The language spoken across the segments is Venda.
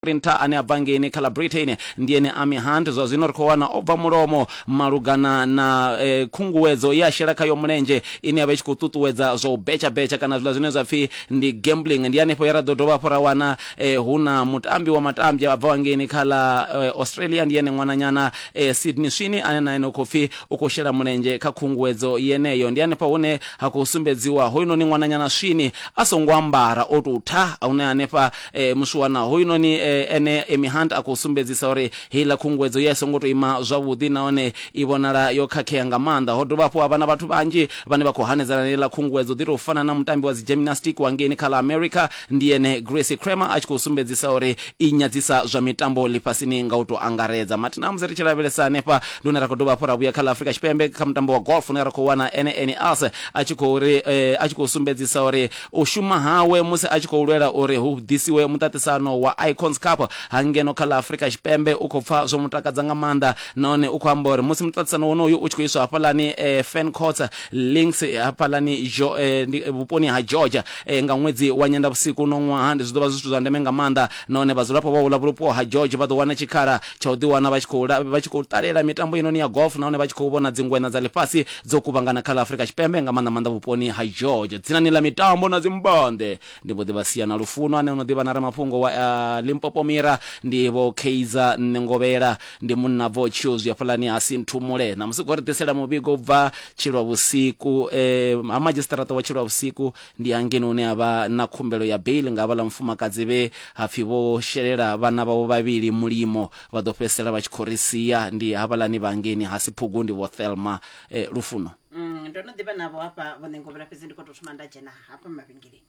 Sprinter ane a bva ngeini kha ḽa Britain ndi ene Amy Hunt zwa zwino ri khou wana o bva mulomo malugana na khunguwedzo ye a shela khayo mulenzhe ine ya vha i tshi khou ṱuṱuwedza zwa u betshabetsha kana zwiḽa zwine zwa pfhi ndi gambling. Ndi hanefho he ra ḓo dovha hafhu ra wana hu na mutambi wa matambya a bvaho ngeini kha ḽa Australia ndi ene ṅwananyana Sydney Sweeney ane na ene u khou pfhi u khou shela mulenzhe kha khunguwedzo yeneyo. Ndi hanefha hune ha khou sumbedziwa hoyunoni ṅwananyana Sweeney a songo ambara o tou tha hune hanefha e, muswana hoyunoni e, ene Amy Hunt a khou sumbedzisa uri heiḽa khunguwedzo ye a songo tou ima zwavhuḓi nahone i vhonala yo khakhea nga maanḓa ho dovha hafhu ha vha na vhathu vhanzhi vhane vha khou hanedzana na heiḽa khunguwedzo ḓi tou fana na mutambi wa dzi gymnastic wa ngeini kha ḽa America ndi ene Gracie Kramer a tshi khou sumbedzisa uri i nyadzisa zwa mitambo ḽifhasini nga u tou angaredza mathi na musi ri tshi lavhelesa hanefha ndi hune ra khou dovha hafhu ra vhuya kha ḽa Afrika Tshipembe kha mutambo wa golf une ra khou wana ene Ernie Els a tshi khou ri eh, a tshi khou sumbedzisa uri U shuma hawe musi a tshi khou lwela uri hu ḓisiwe muṱaṱisano wa Icons Cup ha ngeno kha ḽa Afrika Tshipembe u khou pfa zwo mu takadza nga maanḓa nahone u khou amba uri musi muṱaṱisano wonoyu u tshi khou iswa hafhaḽani Ferncourt Links hafhaḽani vhuponi ha Georgia nga ṅwedzi wa Nyendavhusiku uno ṅwaha, zwi ḓo vha zwi zwithu zwa ndeme nga maanḓa nahone vhadzulapo vha uḽa vhupo ha George vha ḓo wana tshikhala tsha u ḓiwana vha tshi khou la- vha tshi khou ṱalela mitambo inoni ya golf nahone vha tshi khou vhona dzingweṋa dza ḽifhasi dzo kuvhangana kha ḽa afurika tshipembe nga maanḓa maanḓa vhuponi ha george dzinani ḽa mitambo na dzimbanḓe ndi mbo ḓi vha sia na lufuno ane ono ḓivha na ramafhungo wa uh, limpopo mira ndi vho keiza nṋe ngovhela ndi munna bvo tshio zwi hafhaḽani ha sinthumule na musi khou ri ḓisela muvhigo u bva tshilwa vhusiku eh, ha madzhisiṱaraṱa wa tshilwa vhusiku ndi hangeni hune ha vha na khumbelo ya bail nga havhaḽa mufumakadzi vhe ha pfi vho shelela vhana vhavho vhavhili mulimo vha ḓo fhedzisela vha tshi khou ri sia ndi havhaḽani vha ngeni ha si phugu ndi vho thelma eh, lufuno Mm, ndo no ḓivha navho hafha vho ṋengovhela fhedzi ndi khou tou thoma nda dzhena hafha mavhengeleni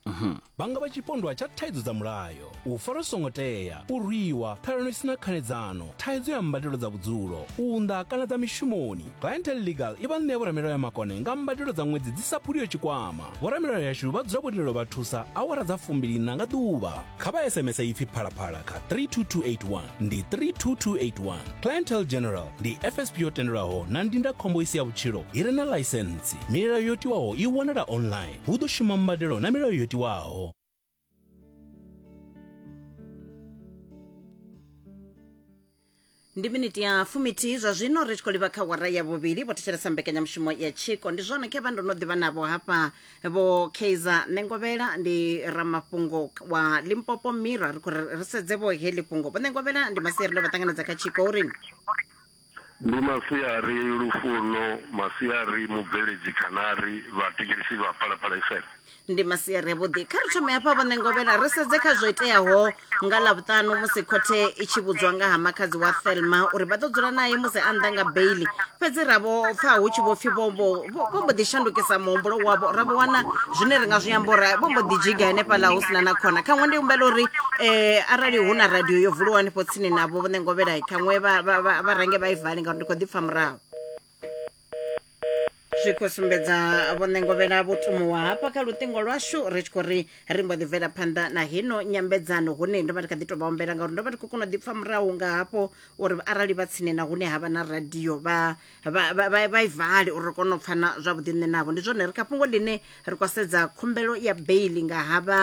vhanga vha tshipondwa tsha thaidzo dza mulayo u farwa zwi songo tea, u rwiwa, ṱhalano i si na khanedzano, thaidzo ya mbadelo dza vhudzulo, u unḓa kana dza mishumoni. Clientele Legal i vha ṋea vhoramilayo ya makone nga mbadelo dza ṅwedzi dzi sa phuliho tshikwama. Vhoramilayo yashu vha dzula vho tendelwa vha thusa awara dza fumbiliiṋa nga ḓuvha. Kha vha SMS ipfi Phalaphala kha 32281 ndi 32281. Clientele General ndi FSP yo tendelwaho na ndindakhombo i si ya vhutshilo i re na ḽaisentsi. Milayo yo tiwaho i wanala online. Hu ḓo shuma mbadelo na milayo yo tiwaho. ndi miniti ya fuminthihi zwa zwino ri tshi khou livha kha wara ya vhuvhili vho thetshelesa mbekanyamushumo ya tshiko ndi zwone khevha ndo no ḓivha navho hafha vho kaizer nengovhela ndi ramafhungo wa limpopo mira ri khou ri ri sedze vho heḽi fhungo vho nengovhela ndi maseri ndo vha ṱanganedza kha tshiko uri Ndi masiari Lufuno, masiari Mubveledzi Khanari, vhathetshelesi vha Phalaphala FM. Ndi masiari a vhuḓi. Kha ri thome hafha vho Ṋengovhela ri sedze kha zwo iteaho nga ḽavhuṱanu musi khothe i tshi vhudzwa nga ha makhadzi wa Thelma uri vha ḓo dzula nae musi a nnḓa nga beili. Fhedzi ra vho pfa hu tshi vho pfi vho vho vho mbo ḓi shandukisa muhumbulo wavho ra vho wana zwine ri nga zwi amba uri vho mbo ḓi dzhiga henefhaḽa hu sina na khona khaṅwe ndi humbela uri um arali hu na radio yo vuliwa hanefho tsini navho vho ṋengovhela khaṅwe vha range vha i vale ngauri ndi khou ḓi pfa murahu zwi khou sumbedza vhoṋengovhela vho tumuwa hafha kha luṱingo lwashu ri tshi khou ri ri mbo ḓi bvela phanḓa na hino nyambedzano hune ndo vha ndi kha ḓi tou vha ombela ngauri ndo vha ndi khou kona u ḓipfa murahu nga hafho uri arali vha tsini na hune ha vha na radio vha vha vha- vha- vha i vale uri ri kone u pfana zwavhuḓi nṋe navho ndi zwone ri kha fhungo ḽine ri khou sedza khumbelo ya beili nga ha vha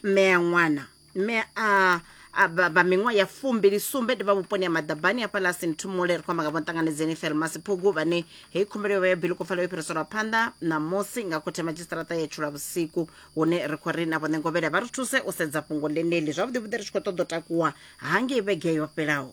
mmea ṅwana mme a a vha vha miṅwaha ya fumbili sumbe ndi vha vhuponi ha maḓabani hafha ḽa sinthumule ri khou amba nga vho nṱanganedzeni felmasi phugu vhane heyi khumbelo yo vha ya bili kho fela yo fhiriselwa phanḓa ṋamusi nga khothe madzhisiṱaraṱa ya tshula vhusiku hune ri khou ri na vhone ngovhela vha ri thuse u sedza fhungo ḽeneḽi zwavhuḓi vhuḓi ri tshi khou ṱoḓa u takuwa hangei vhege yo fhelaho